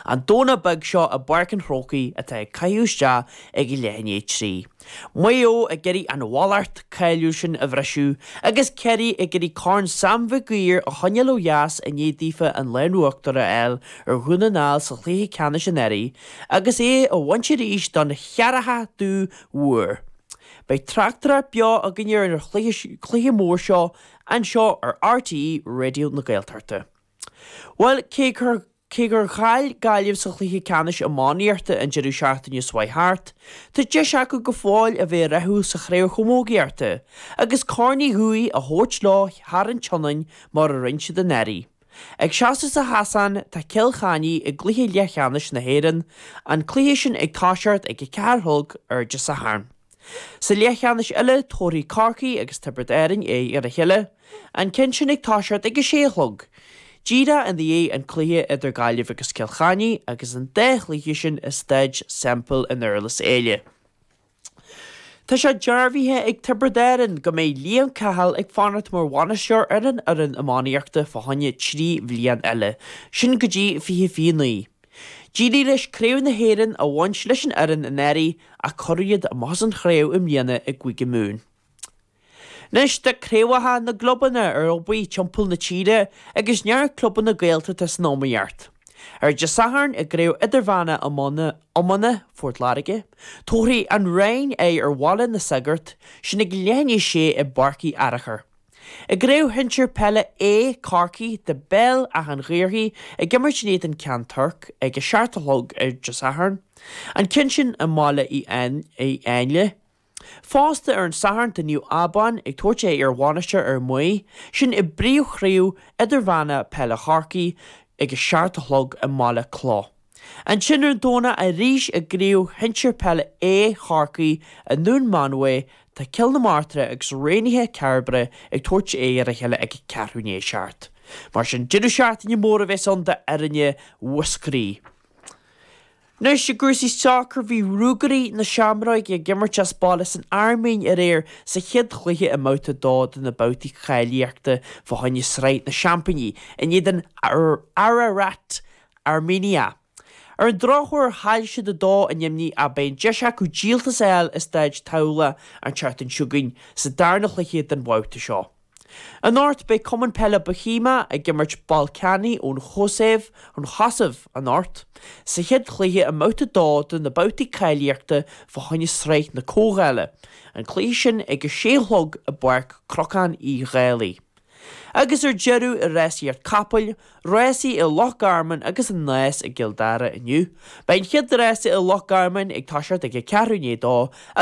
An Domhnach beag seo i bPáirc an Chrócaigh atá an caitheamh isteach ag leath i ndiaidh 3. Maigh Eo ag iarraidh an mhallacht cháiliúil sin a bhriseadh agus Ciarraí ag iarraidh Corn Sam Mhig Uidhir a choinneáil ó dheas i ndiaidh daofa an lámh in uachtar a fháil ar Dhún na nGall sa chluiche ceannais anuraidh agus é a bhaint arís don cheathrachadú huair. Beidh tráchtaireacht beo againn ar an chluiche mór seo anseo ar RTÉ Raidió na Gaeltachta. Bhuel, cé gur. Cé gur chaill Gaillimh sa chluiche ceannais iománaíochta an deireadh seachtaine seo a chuaigh thart, tá deis acu go fóill a bheith rathúil sa chraobh chamógaíochta agus Corn Uí Dhubhthaigh a thabhairt leo thar an tSionainn mar a rinne siad anuraidh. Ag seasamh sa chasán tá Cill Chainnigh i gcluiche leathcheannais na hÉireann, an cluiche sin ag toiseacht ag a ceathair a chlog ar an Satharn. Sa leathcheannais eile tabharfaidh Corcaigh agus Tiobraid Árainn aghaidh ar a chéile. An ceann sin ag toiseacht ag a sé a chlog. Díreach i ndiaidh an cluiche idir Gaillimh agus Cill Chainnigh agus an dá chluiche sin i Staid Semple i nDurlas Éile. Tá sé dearbhaithe ag Tiobraid Árainn go mbeidh Liam Cahill ag fanacht mar bhainisteoir ar an fhoireann iománaíochta fá choinne trí bhliain eile, sin go dtí fiche fiche naoi. D'éirigh leis Craobh na hÉireann a bhaint leis an fhoireann anuraidh ach cuireadh iad amach as an chraobh i mbliana i gCúige Mumhan. Anois tá craobhacha na gclubanna ar obair timpeall na tíre agus neart clubanna Gaeltachta san iomaíocht. Ar Dé Sathairn i gCraobh Idirmheánach Iomána Phort Láirge, tabharfaidh An Rinn aghaidh ar Bhaile na Sagart, sin ag leath i ndiaidh 6 i bPáirc Uí Fhearachair. I gCraobh Shinsir Peile A Chorcaí tá Béal Átha an Ghaorthaidh ag imirt in éadan Ceann Toirc ag a seacht a chlog ar Dé Sathairn, an ceann sin i mBaile Uí Áinle. Fosta ar an Satharn tá Naomh Abán ag tabhairt aghaidh ar Mhainistir Fhear Maí sin i bpríomhchraobh idirmheánach peile Chorcaí ag a seacht a chlog i mBaile Cloch. Ansin ar an Domhnach arís i gCraobh Shinsir Peile A Chorcaí i nDún Mánmhaí tá Cill na Martra agus Raonaithe Cairbre ag tabhairt aghaidh ar a chéile ag ceathrú i ndiaidh a seacht. Mar sin deireadh seachtaine mór a bheas ann d'fhoirne Mhúscraí. Anois i gcúrsaí sacair bhí Ruagairí na Seamróige ag imirt as baile san Airméin aréir sa chéad chluiche i mbabhta a dó de na babhtaí cáilíochta fá choinne Sraith na Seaimpíní in éadan Ararat Armenia. Ar an drochuair chaill siad 2 a neamhní ach beidh an deis acu díoltas a fháil i Staid Thamhlachta an tseachtain seo chugainn sa darna chluiche den bhabhta seo. Anocht beidh Cumann Peile Bóithéimeach ag imirt Ballkani ón Chosaiv, an Chosaiv, anocht, sa chéad chluiche i mbabhta 2 de na babhtaí cáilíochta fá choinne Sraith na Comhdhála, an cluiche sin ag a 6 a chlog i bPáirc Cnocán Uí Dhálaigh. Agus ar deireadh i Rásaíocht Capall, Rásaí i Loch Garman agus an Nás i gCill Dara inniu. Beidh an chéad rása i Loch Garman ag toiseacht ag a ceathrú i ndiaidh a dó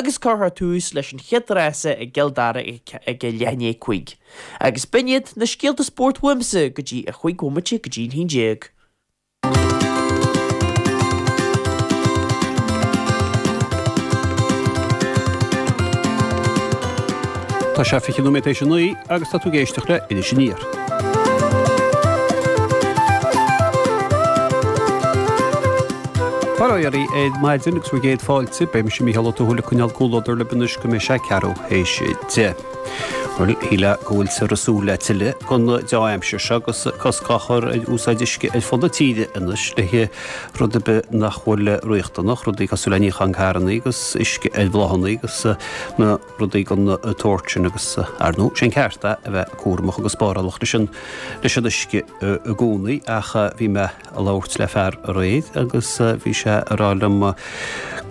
agus cuirfear tús leis an chéad rása i gCill Dara ag a leath i ndiaidh a cúig. Agus b'in iad na scéalta spóirt uaimse go dtí a cúig bhomaite go dtí an haon déag. Tá sé 20 nóiméad tar éis a naoi agus tá tú ag éisteacht le Inis Aniar, Faraoirí, ar maidin agus míle is céad fáilte, beidh mise Mícheál Ó Tuathail ag coinneáil comhluadar libh anois go mbeidh sé ceathrú théis a deich. Síleadh go bhfuiltear ag súil le tuilleadh den dea-aimsir seo agus cosc á chur ar úsáid uisce ar fud na tíre anois le haghaidh rud ar bith nach bhfuil riachtanach, rudaí cosúil le níochán carrannaí agus uisce ar bhláthanna agus na rudaí den tsórt sin agus ar ndóigh sé an ceart a bheith cúramach agus spárálach leis an leis an uisce i gcónaí ach bhí mé ag labhairt le fear aréir agus bhí sé ag rá liom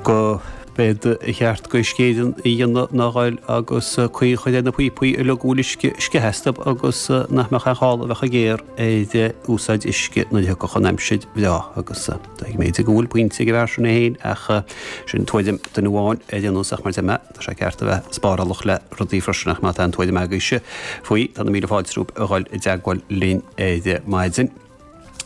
go mba cheart go scéim a dhéanamh ná dhul agus caoi a chur ar na píopaí uilig a bhfuil uisce ag sceitheadh astub agus nach mbeadh aon chall a bheith ag gearradh ar úsáid uisce nuair a thiocfadh an aimsir breá agus is dóigh go bhfuil pointe ag an bhfear sin é féin ach sin tuairim duine amháin ar aon nós ach mar a deir mé tá sé ceart a bheith spárálach le rudaí freisin ach má tá aon tuairim agaibhse faoi tá na míle fáilte romhaibh a dhul i dteagmháil linn ar maidin.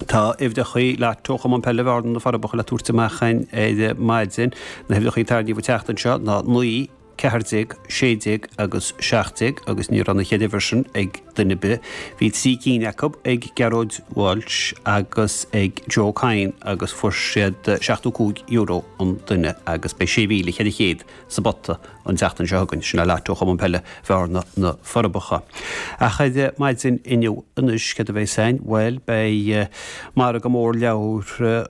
Tá uimhreachaí lotto Chumann Peile Bhearna na Forbacha le tabhairt amach ar maidin. Na huimhreachaí a tarraingíodh an tseachtain seo ná 19, 14, 16 agus 17 agus ní raibh na cheithre uimhir sin ag duine ar bith. Bhí trí cinn acub ag Gearóid Walsh agus ag Joe Cadhain agus fuair siad €75 an duine agus beidh €6,400 sa bpota. An tseachtain seo chugainn, sin an lotto Chumann Peile Bhearna, Na Forbacha. Ach ar maidin inniu anois, céard a bheas againn? Bhuel, beidh margadh mór leabhar,